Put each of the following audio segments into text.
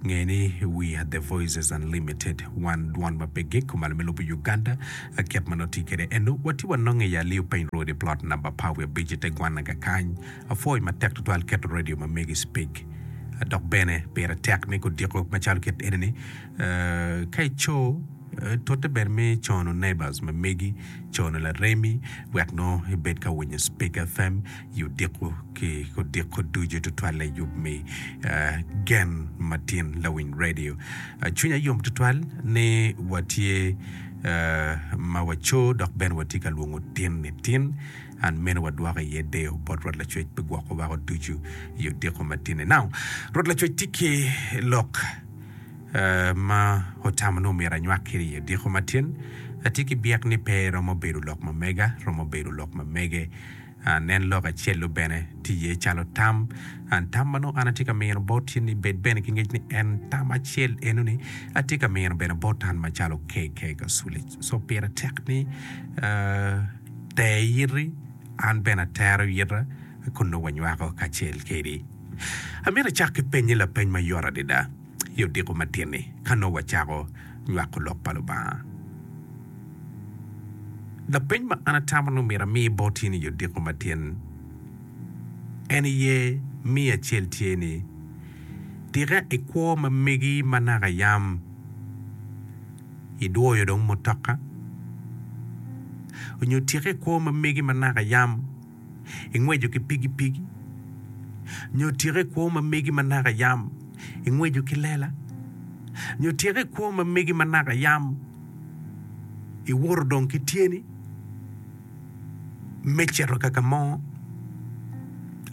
Nge ni, We are the Voices Unlimited, Wan Dwon ma Pe Gik, Kumalo me Lobo Uganda, kit ma nongo tye kwede eno, watye wanonge i Aliu Piny Road i plot namba par wiye abic i te gwanaga kany. Apwoyo matek tutwal keto redio ma megi cipig. Dok bene, pire tek ni gudiko macalo kit eni-ni. Ka ico, tute bene me cono neighbors ma megi, cono laremi, wek nongo ibed ka winyo Cipig FM. i odiko ki odiko ducu tutwal layub me gen matin lawiny radio. Cwinya yom tutwal ni watye ma waco dok bene watye ka lwongo tin ni tin an mene wadwoko iye deyo bot Rwot Lacwec pi gwoko wako ducu i odiko matinni. Now, Rwot Lacwec tye ki lok ma otamo ni omyero anywak kiri i odiko matin. Atye ki byek ni pe romo bedo lok ma mega, romo bedo lok ma mege. Nen lok acel-lu bene, tye iye calo tam. Tam ma nongo an atye ka mino boti ni bed bene ki ngec ni en tam acel enoni, atye ka mino bene bot an macalo KK Kaculi. So pire tek ni ter iti, an bene atero ita kun nongo wanywako kacel kedi. Amito acak ki penyi lapeny ma yot adada. i odiko matin-ni ka nongo wacako nywako Lok pa Lubanga? Lapeny ma an atamo ni omyero ami bot in i odiko matin en aye me acel tye ni, Tika ikwo ma megi ma naka yam idwoyo dong mutoka? Nyo tika ikwo ma megi ma naka yam ingweco ki pigipigi, nyo tika i kwo ma megi ma naka yam ingweco ki lela? Nyo tika i kwo ma megi ma naka yam iwoto dong ki tyeni me cito ka ka mo?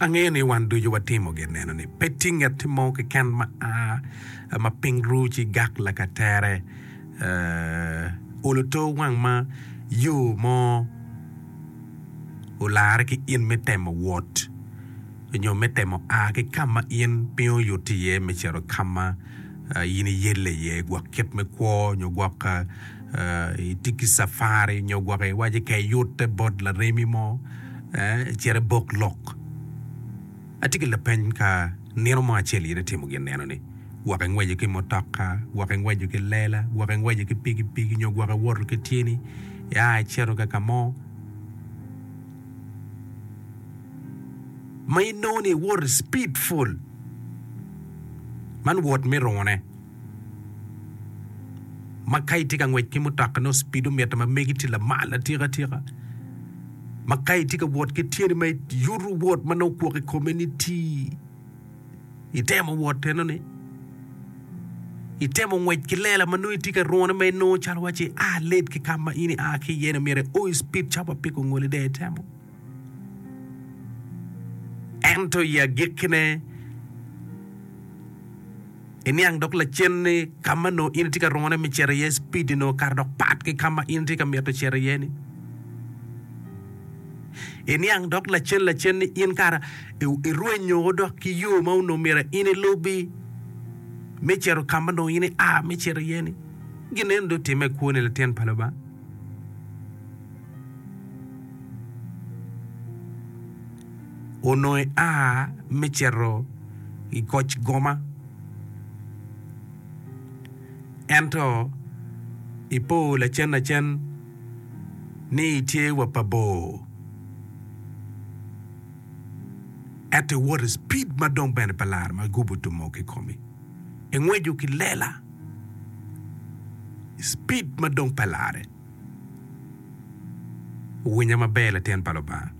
Angeyo ni wan ducu watimo gin meno ni pe tye nget mo keken ma a ma piny ru ci gak lakatere olo to wang ma yo mo. olarre ki in me temo wot nyo me temo a ki ka ma in piny oyuto iye me cito ka ma in iyelle iye gwok kit me kwo nyo gwok itye ki cafari nyo gwok iwaco ka iyutte bot laremi mo, cit ibok lok. Atye ki lapeny, Ka nino mo acel in itimo gin neno ni, gwok ingweco ki mutoka, gwok ingweco ki lela, gwok ingweco ki pikipiki nyo gwok iwoto ki tyeni ia icito ka ka mo ma inongo ni iwoto i cipid pol, man wot me rungune. ma ka itye ka ngwec ki mutoka nongo speedo mitte ma megi tye lamal atika tika ma ka itye ka wot ki tyeni ma yuto wot ma nongo kwok i kome ni ti itemo wot enoni itemo ngwec ki lela ma nongo itye ka rune ma inongo calo waci a late ki ka ma in ia ki iye-ni myero ioyo speed ca ma piko ngoli dong itemo Ento i agikkine, iniang dok lacen ni ka ma nongo in itye ka rungone me cito iye, cpid-di nongo kato dok pat ki ka ma in itye ka mito cito iye-ni. Iniang dok lacen lacen ni in kara irwenyo dok ki yo ma onongo myero in ilubi me cito ka ma nongo in ia me cito iye-ni. Gin eni dong otimme i kwoni, Latin pa Lubanga. Onongo ia me cito i koc goma, ento ipo lacenlacen ni itye wa pa bor, ento iwoto i cipid ma dong bene pe laro ma igubo tumo kikomi. Engweco ki lela i cipid ma dong pe larre. Wuwinya maber latin pa Lubanga.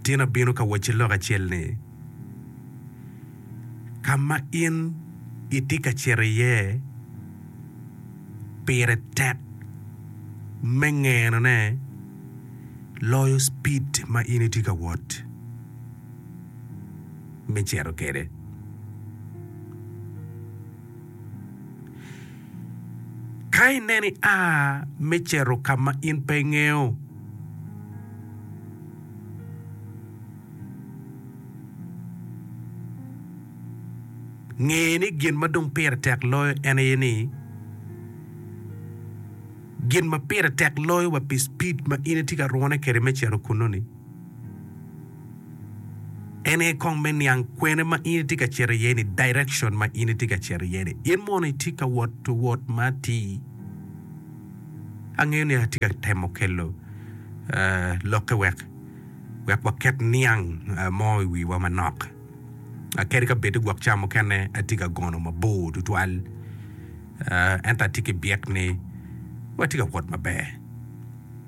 Tin abino ka wacci lok acel ni, ka ma in itye ka cito iye pire tek me ngenone loyo cipid ma in itye ka wot. me cito kwede. Ka ineno ia me cito ka ma in pe ingeyo, nge ni gin ma dong pire tek loyo en aye ni gin ma pire tek loyo wa pi cipid ma in itye ka rwone kwede me cito kunnu-ni. En aye kong me niang kwene ma in itye ka cito iye ni, direction ma in itye ka cito iye ni. In mono itye ka wot wot ma atir? Angeyo ni atye ka temo kelo lokke wek wek waket niang mo i wiwa manok. Kadi ka bed gwok ca mukene atye ka gono mabor tutwal, ento atye ki byek ni watye ka wot maber.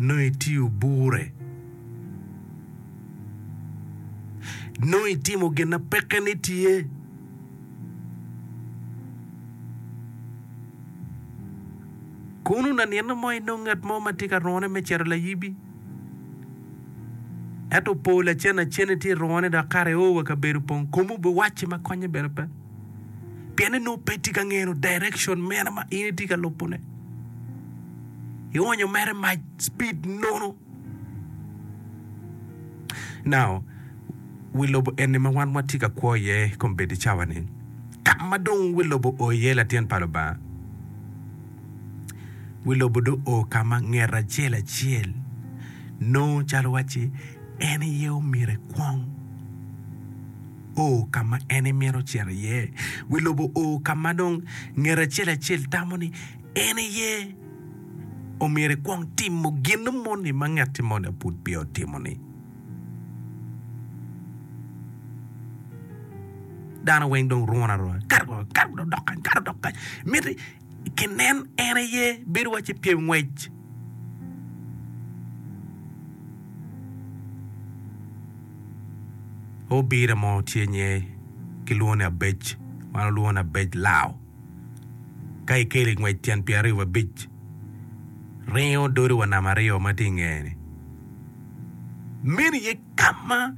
nongo itiyo bure, nongo itimo gin ma peke ni tye. Kono lanino mo inongo ngat mo ma tye ka rone me cito layibi, ento opo lacen acen itye irone dok kare i oo wa kabedo opong, komu biwacci ma konye bene pe. Pien en nongo pe tye ka ngeno direction mere ma in itye ka lubo ne. Ionyo mere mac speed nono. Now, wi lobo eni ma wan watye ka kwo iye kombeddi cawa ni, ka ma dong wi lobo o iye latin pa Lubanga, wi lobo dong o ka ma nget acel acel nongo calo wacci en aye omyero ekwong. o ka ma en imito cito iye. Wi lobo o ka ma dong ngat acel acel tamo ni en iye omyero ekwong timo gin moni ma ngatti moni pud peya otimo-ni. Dano weng dong runu aruna, kato dok kany, kato dok kany, miti. Kinen en aye bedo waci pyem ngwec. Obira mo tye nye kilwongo ni Abej, wan olwongo ni Abej Lao. Ka ikelo i ngwec tyen pyera aryo wabic, ringo dodi wa nama aryo ma tye i ngeye ni. Meno aye kama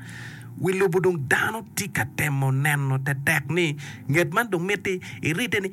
wi lobo dong dano tye ka temo neno tetek ni nget man dong miti irite ni.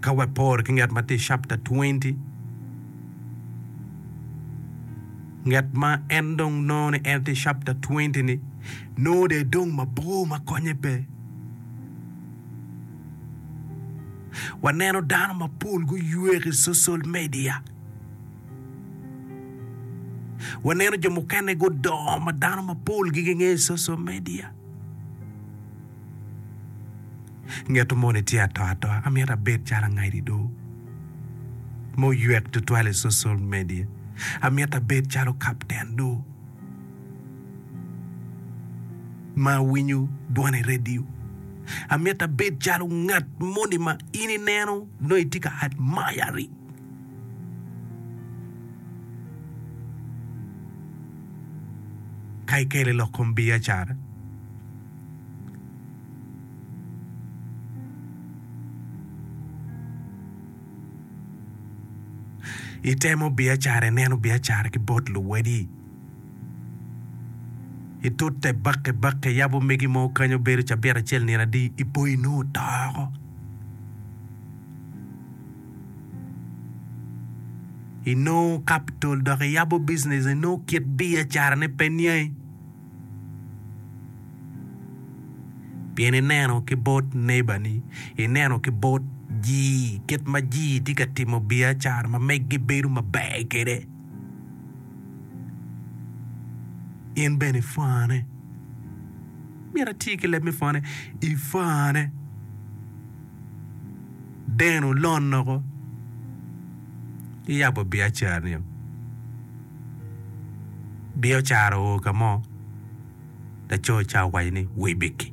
Ka wapor ki nget ma tye i capta 20, nget ma en dong nongo ni en tye i capta 20-ni nongo dong edong mabor ma konye pe. Waneno dano mapol guywe ki social media. Waneno jo mukene gudongo ma dano mapol-gi gingeyo i social media. Ngeto moni tye ato atoa. Amyero abed calo angadi do ma oywek tutwal i social media. Amyero abed calo kapten do ma awinyo dwon i radio. Amyero abed calo ngat moni ma in ineno nongo itye ka admiring. Ka ikelo i lok kom biacara. Itemo biacara, ineno biacara ki bot luwadi. Itute bakke bakke, iyabo megi mo kany obedo cabit acel nino adi, ipo inongo oto oko. Inongo kapitol dok iyabo bijinec, inongo kit biacarane pe niangi. Pien ineno ki bot nebani, ineno ki bot ji kit ma ji tye ka timo biacara ma megi bedo maber kwede, in bene ipwone. Myero ati ki leb me pwone, ipwone. Deno lonoko iyabo biacara-ni. Biacara oo ka mo, laco ca owaco ni, 'Wibiki,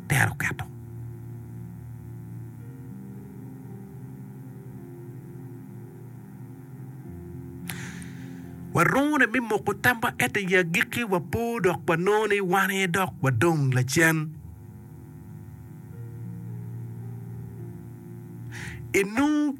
tera oketo. Warungune me moko tamwa ento i agikki wapo dok wanongo ni wan aye dok wadong lacen. Inongo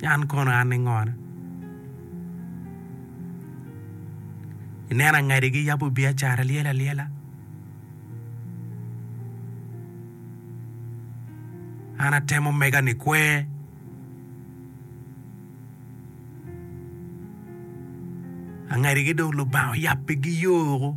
ni an kono an ningone. Ineno angadi giyabo biacara lyel alyela. An atemo mega ni kwer. Angadi gi dong lubanga oyabbi giyoko.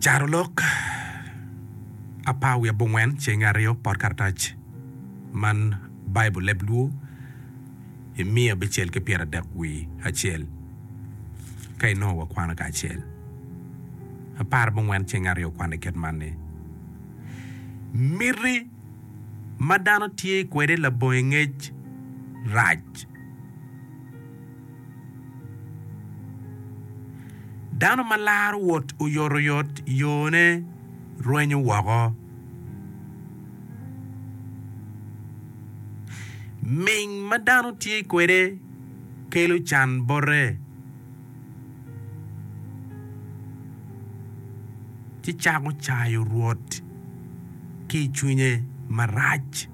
Carolok apar wiye abongwen cenge aryo pot karatac man Baibul Leb Luo i miya abicel ki pyeradek wiye acel ka inongo wakwano kacel. Apar abongwen cenge aryo okwane kit man ni, Miti ma dano tye kwede labongo i ngec rac. Dano ma laro wot oyotoyot yone rwenyo woko. Ming ma dano tye kwede kelo can bote, ci cako cayo Rwot ki i cwinye marac.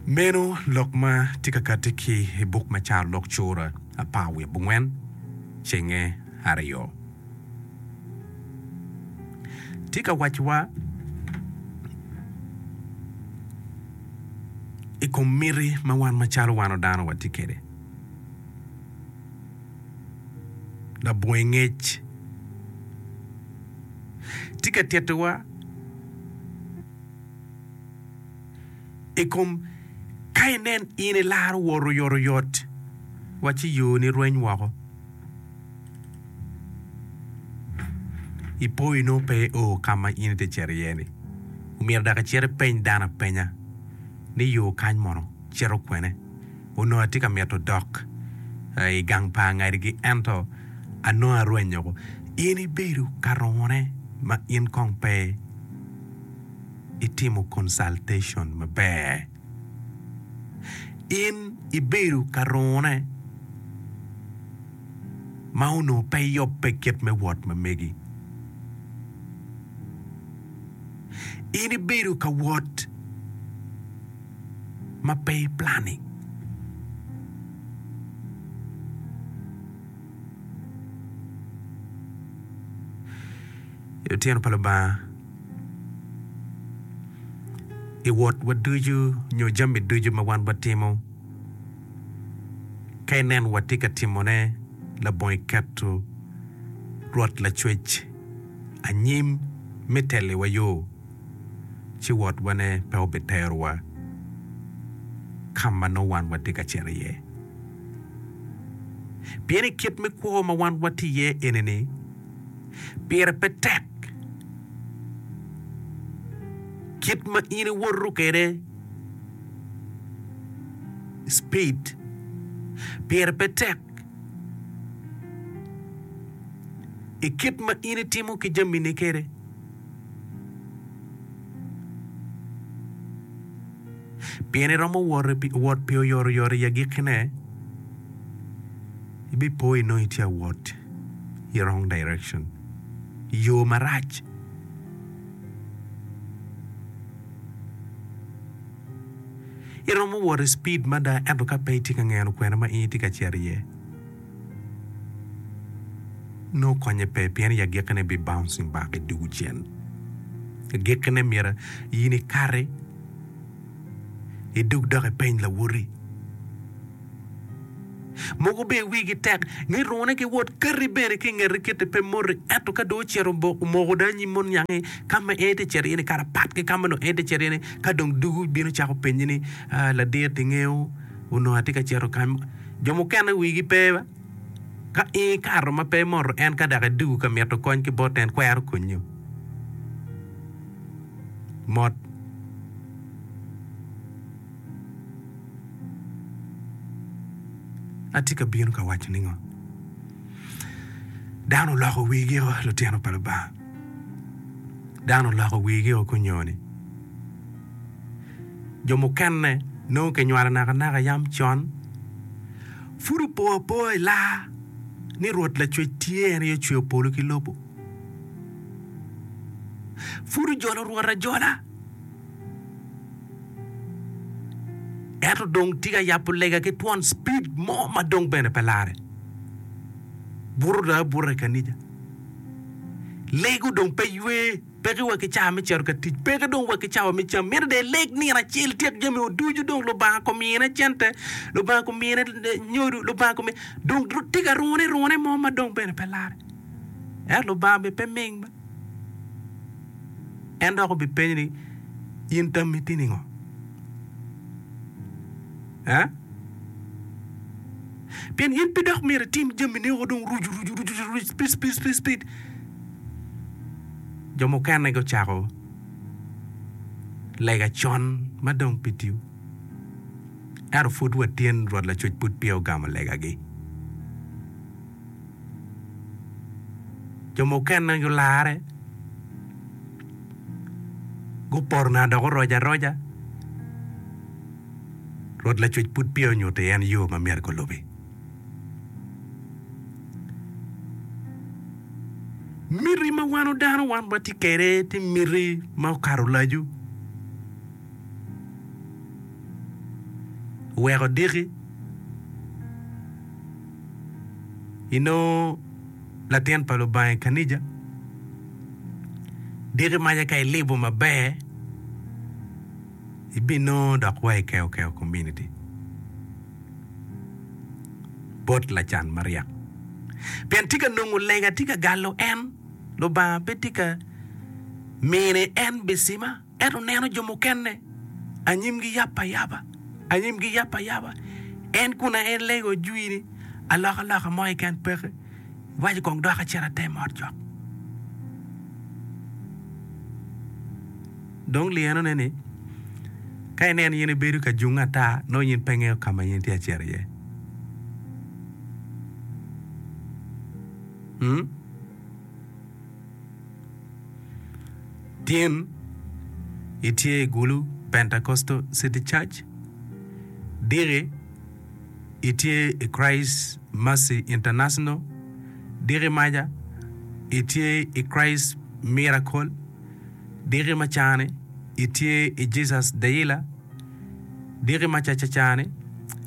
Meno lok ma tye ka kati ki i buk me Carolok cura apar wiye abongwen cenge aryo. Tye ka wacciwa i kom miti ma wan macalo wan dano watye kwede. Labongo i ngec. tye ka tittiwa i kom ka inen in ilaro wot oyotoyot wa ci yoni rweny woko, ipo inongo pe io ka ma in ite cito iye-ni. Omyero dok icit ipeny dano apenya ni yo kany mono. cito kwene. Onongo atye ka mito dok i gang pa angadigi, ento anongo arwenyo woko. In ibedo ka rongone ma in kong pe itimo consultation maber. In ibedo ka rongone ma onongo pe iyobbe kit me wot ma megi. In ibedo ka wot. ma pe iplanni. I otyeno pa Lubanga, i wotwa ducu nyo jami ducu ma wan watimo, ka ineno watye ka timone labongo iketo Rwot Lacwec anyim me telliwa yo. ci wotwane pe obiterowa ka ma nongo wan watye ka cito iye. Pien i kit me kwo ma wan watye iye eni-ni, pire pe tek kit ma in iwoto kwede, speed, pire pe tek i kit ma in itimo ki jamini kwede. Pien iromo wot pi oyotoyot i agikkine, ibipo inongo itye ka wot i wrong direction, i yo marac. Iromo wot i cipid mada ento ka pe itye ka ngeno kwena ma in itye ka cito iye, Nongo konye pe pien i agikkine bi bouncing back i dugu cen. Agikkine myero in ikati idog dok ipeny lawoti. Mogo bene wigi tek ni rune giwot kati bene ki ingeti kiti pe moti ento ka dong ocito omoko dong anyim mono niangi ka ma en tye cito iye ni kara pat ki ka ma dong en tye cito iye ni ka dong dugu bino cako penyi ni ladit ingeyo Onongo atye ka cito kany ma jo mukene wigi pe. Ka in ikato ma pe imoto en ka dok idwogo ka mito kony ki bote en kwero konyo. Mot. Atye ka bino ka waco ningo? Dano oloko wigi o lutino pa Lubanga. Dano oloko wigi o kunyo ni. jo mukene nongo kinywalo nakanaka yam con. Pud opo apoa i laa ni Rwot Lacwec tye, en aye ocweyo polo ki lobo. Pud ojolo Rwot ajola, ento dong tye ka yabo lega ki twon cipid mo ma dong bene pe larre. Buto dong abuta i kanija, lego dong pe ywe. Peke wa ki cawa me cito ka tic, peke dong wa ki cawa me cam. Myero dong ileg nino acel tyek jamiwu ducu, dong Lubanga komine cente, Lubanga komine nyodo, Lubanga komine dong tye ka rune rune mo ma dong bene pe larre. Ento Lubanga bene pe ming ma en dok obipenyi ni, In tammi tye ningo? Ee? Pien in pe dok myero itim jamini woko dong rucu rucu rucu rucu, speed speed speed speed. jo mukene gucako lega con ma dong pi tyu. Ento pud watyen, Rwot Lacuc pud peya ogamo legagi. Jo mukene gularre, gupoto nanga dok oroc aroca, Rwot Lacuc pud peya onyutti en yo ma myero gulubi. Miti ma wan dano wan watye kwede tye miti ma okato lacu. Weko diki inongo latin pa Lubanga i kanija, diki maca ka ilibo maber ibinongo dok wa i keokeokomuniti. bot lacan maryek. Pien tika nongo lega tye ka galo en? Lubanga pe tye ka mine en bicima? Ento neno jo mukene, anyimgi yap ayaba, anyimgi yap ayaba, en kun aye lega ojwini, alokaloka mo keken peke. Iwaco kong dok acit ate mot cok. Dong lyenone ni, ka ineno in ibedo ka junge ata, nongo in pe ingeyo ka ma in itye ka cito iye. Hmm? Tin itye i Gulu Pentecostal City Church, diki itye i Christ Mercy International, diki maca itye i Christ Miracle, Diki ma cani itye i Jesus Dealer, diki ma caca cani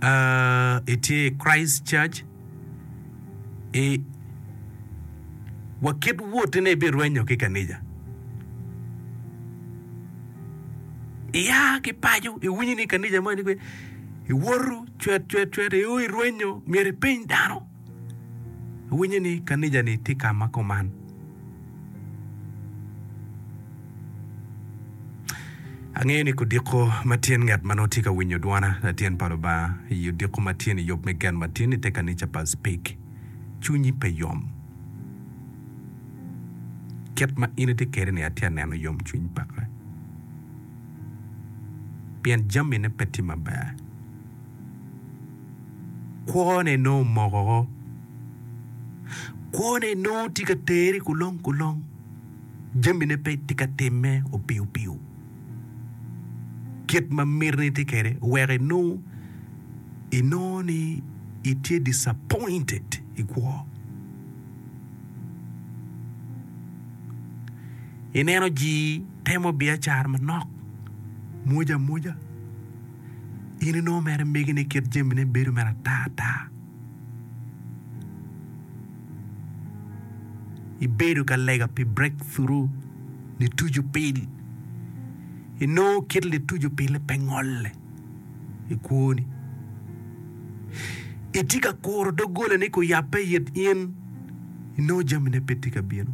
uh itye i Christ Church i wa kit woti ne ibirwenyo ki kanija. Iya ki paco iwinyo ni kanija moni pe iwoto cwet cwet cwet i o irwenyo myero ipeny dano. Awinyo ni kanija ni tye ka ma kuman. Angeyo ni kudiko ma tyen ngat ma nongo tye ka winyo dwona, Latyen pa Lubanga, i odiko ma tyen i yub me gen ma tyen i te kanica pa Speke, cwinyi pe yom. Kit ma in itye kede ni atye aneno yom cwiny peke, pien jamine pe tye maber. kwone nongo omokoko. Kwone nongo tye ka tere kulong kulong. Jamine pe tye ka timme opiyo piyo. Kit ma miti ni tye kwede oweko inongo inongo ni itye disappointed i kwo. Ineno jii temo biacara manok, mwoc amwoca. in inongo mere imegine kit jamine bedo mere ata ata. Ibedo ka lega pi breakthrough, lituc opil. Inongo kit lituc opille pe ngolle i kwoni. Itye ka kuro doggolani ka oyabbe i it in, inongo jamine pe tye ka bino.